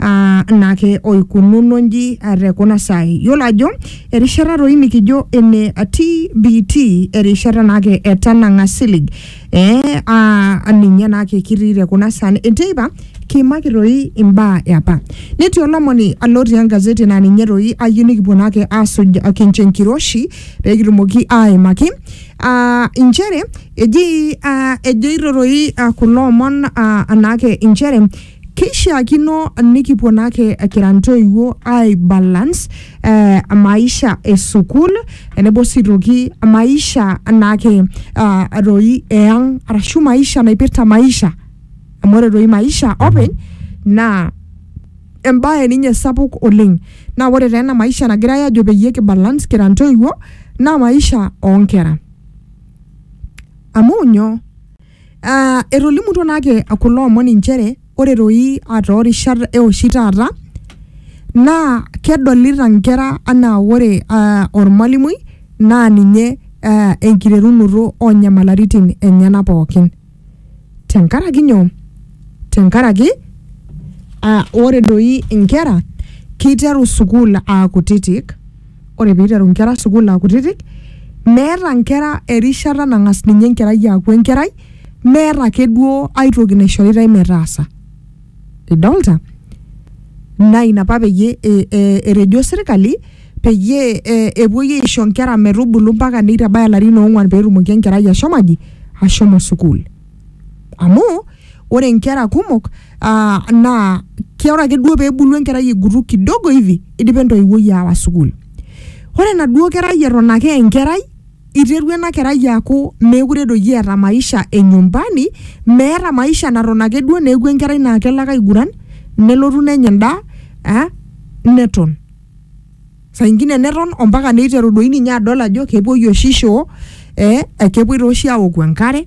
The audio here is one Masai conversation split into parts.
uh, naake oikununo nji te kuna saai. Yiolo ajo erishata doi nikijo ene TBT erishata naake etanang'a silig eh, uh, ninye naake kitii te kuna saai enteipa kiimaki doi imbaa eapa. Netii olomoni lotii engazeti naa ninye doi ayieu nikipuo naake aasuj kincho enkiroshi pee kitumoki aaimaki uh, inchere eji uh, ejoito doi uh, kulo omon uh, naake inchere Keishiakino nikipuo naake kira ntoiwuo ai balance eh, maisha e sukuul tenebo sii toki maisha naake ah, doi eyang arashu maisha naipirta maisha amu ore doi maisha openy naa embae ninye sapuk oleng naa ore taa ena maisha nagirae aajo peyie ki balance kira ntoiwuo naa maisha onkera amu nyoo Ah, etolimutuo naake kulo omon inchere ore toi ah, toorishat eoshi taata naa kedolita nkera anaa ore ah, ormalimui naa ninye ah, enkiterunoto onyamalaritin enyena pookin tenkaraki nyoo tenkaraki ah, ore doi inkera kiteru sukuul aa kutitik ore piiteru nkera sukuul akutitik meeta nkera erishata nang'as ninye enkerai aaku enkerai meeta ake duo aitoki naishoritai metaasa idolta naa ina apa peyie e- e- etejo sirkali peyie e- epuoi aisho nkera metubulu mpaka nitabaya ilarin ong'uan petumoki enkerai ashomo aji ashomo sukuul amu ore nkera kumok aa naa ke ore ake duo peebulu enkerai egutu kidogo hivi idipa entoiwuoi aawa sukuul ore enaduo kerai eton ake enkerai iterua ena kerai aaku meekure doi eeta maisha e nyumbani meeta maisha naton ake duo neeku enkerai naa kelo ake aiguran nelotu nenya endaa eh neton. saa ingine neton ompaka neiteru doi ninye adol ajo kepuoi oshi shoo eh, kepuoi taa oshi awoku enkare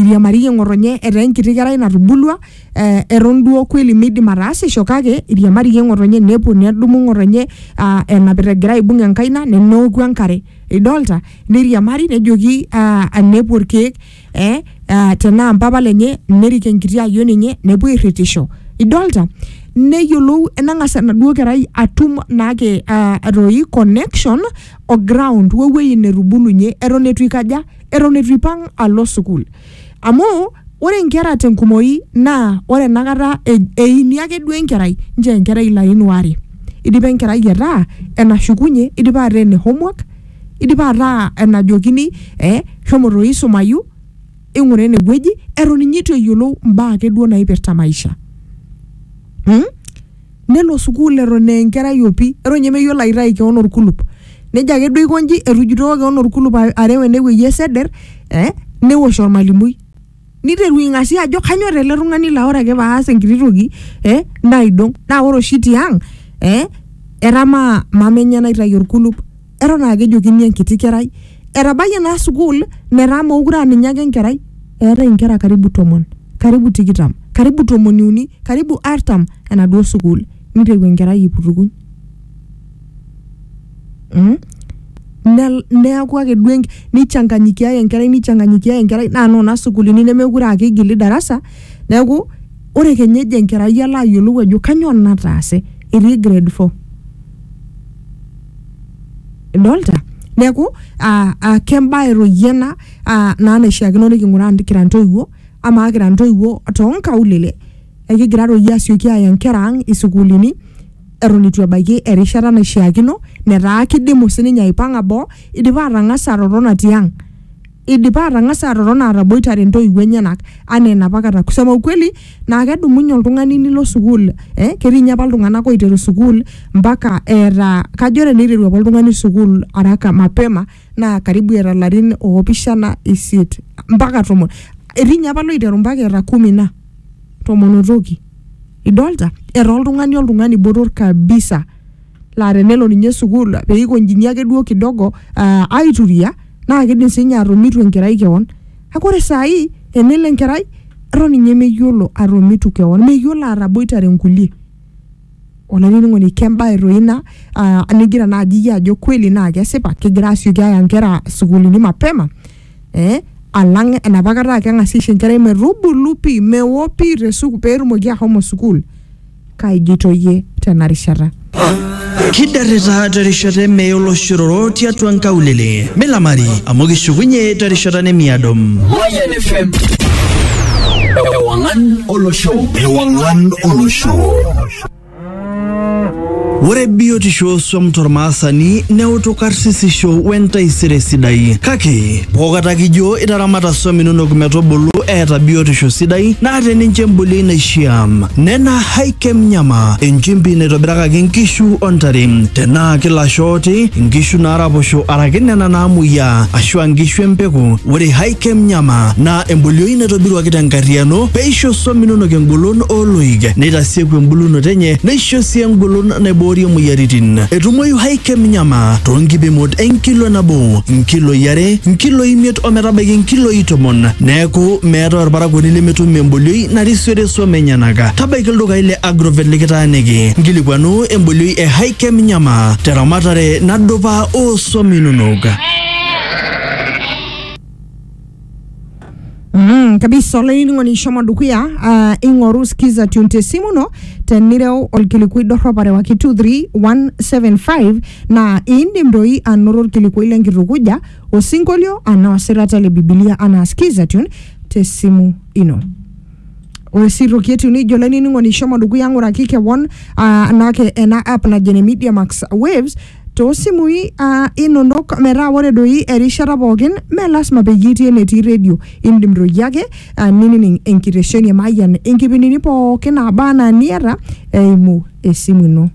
iriamariyie ng'otonye etaa enkiti kerai natubulua eh, eton duo kweli midim ataasisho kake iriamariyie ng'otonye nepuo nedumu ng'otonye ah, enapita egira aibung enkaina ne- neoku enkare idolta neiriamari nejoki ah, nepuo irkeek eh, ah, tenaa mpapa lenye nerik enkiti ayion enye nepuo airritisho idolta neyiolou enang'as enaduo kerai atum naake ah, atoi connection o ground wewueji netubulunye eton etu ikaja eton etu ipang alo sukuul amu ore inkera tenkumoi naa ore enakata e- eini ake duo enkerai nchoo enkerai ilarin waare idipa enkerai ataa enashukunye idipa ataa ene homework Eidipa ataa enajokini eh shomo toi isumayu, ing'ura ene wueji eton ninye eitu eyiolou imbaa ake duo naipirta maisha mm? nelo sukuul eton aa enkerai opi eton ninye meyiolo aitayu kewon orkulup nejia ake duo aiko inji etujutoko kewon orkulup a- areu ene wueji eseder eh newosh ormalimui. niteru ing'asia ajo kanyor ele tung'ani laa ore ake paas enkiti toki eh, naidong naa ore oshi tiang eh, etamaa mama enye naitayu orkulup eton aa kejokini enkiti kerai etabayie naa sukuul metaa mookure aa ninye ake enkerai eetae inkera karibu tomon karibu tikitam karibu tomoniuni karibu artam enaduo sukuul niteru enkerai aiputukuny mm? Ne- neaku ake duo enk- neichanganyikiae enkerai neichanganyikiae enkerai naa noona sukuulini nemekure aa keigili darasa neaku ore kenya ejo enkerai alo ayiolou ajo kanyoo nataase etii grade four idolta neaku aa aa kembae toi ena aa naa naishiakino niking'uraa kira intoiwuo amaa kira intoiwuo tonkaulele ekigira toi iyie asioki aaya inkera ang isukuulini eton itu ebaiki erishata naishiakino netaa kidimu sininye aipang'a boo idipa atang'asa atotona tiang idipa atang'asa atotona ataboitare intoiwuo enyenak anaa enapa kata kusema ukweli naa kedumunye oltung'ani nilo sukuul eh, ketii inye apa iltung'anak oiteru sukuul mpaka eeta kajo teneiteru apa oltung'ani sukuul araka mapema naa karibu eeta ilarin opishana isiet mpaka tomon etii inye apa loiteru mpaka eeta kumi na tomonotoki idolta era oltung'ani oltung'ani botor kabisa laa tenelo ninye sukuul peikonjini ake duo kidogo uh, aituria naa kidim sinye atomitu enkerai kewon kake ore sai enelo enkerai eton ninye meyiolo atomitu kewon meyiolo ataboitare inkulie olainining'oni kembae toi ina uh, nigira naaji iyie ajo kweli naa kesipa kegira asioki aya inkera sukuulini mapema eh, alang enapa kata aa keng'asi aisho enkerai metubulu pii mewo pii te suku peetumoki ahomo sukuul kaijito iyie tena rishata Kidarrita terishata emeye oloshororo tiatua nkaulele. Milamari amu kishukunye terishata nemiado. Mayan FM. Ewangan Olosho. Ewangan Olosho. Ore biotisho ooswam tormaasani neutu karsisisho wentaisere sidai. Kake pookata kijo itaramata swam inonok metubulu eeta biotisho sidai naata ninche embolioi naishiaa. Nena Hikem Nyama, enchimpi naitobirakaki nkishu o ntare. Tenaa kilasho ooti, nkishu naaraposho araki nena naamuoyiaa ashua nkishu empeku, ore Hikem Nyama naa embolioi naitobiruaki tenkarriyiano peisho swam inonok engolon o oloik, neitasieku embulunoto enye neisho sii engolon naiboorie moyiaritin. Etumoyu Hychem Nyama too nkipimot e nkilo nabo, nkiloi are, nkiloi imiet o metabaiki nkiloi tomon. Neaku meetae olparakuoni lemetum embolioi narisiore swam enyenak. Tabaiki ildukai le Agrovet likitaaniki nkilikuanu embolioi e Hychem Nyama te ramatare nadupa oo swam inonok. Mm, kabisa olainining'oni ishomo dukuya uh, ing'oru skiza tune te simu ino tenireu olkilikuai dorrop arewaki 23175 naa iindim doi anoto olkilikuai lenkitukuja osinkolio anaa osirata le bibilia anaa skiza tune te simu ino ore sii toki etiu nijo olainining'oni ishomo dukuya ng'uraki kewon uh, naake ena app najo ene media max waves Too simui aa inonok metaa ore doi erishata pookin mee lasima peyie itii enetii redio. Indim doi ake ninining enkitesheni e Mayian inkipindini pookin naaba anaa niata eimu esimu ino.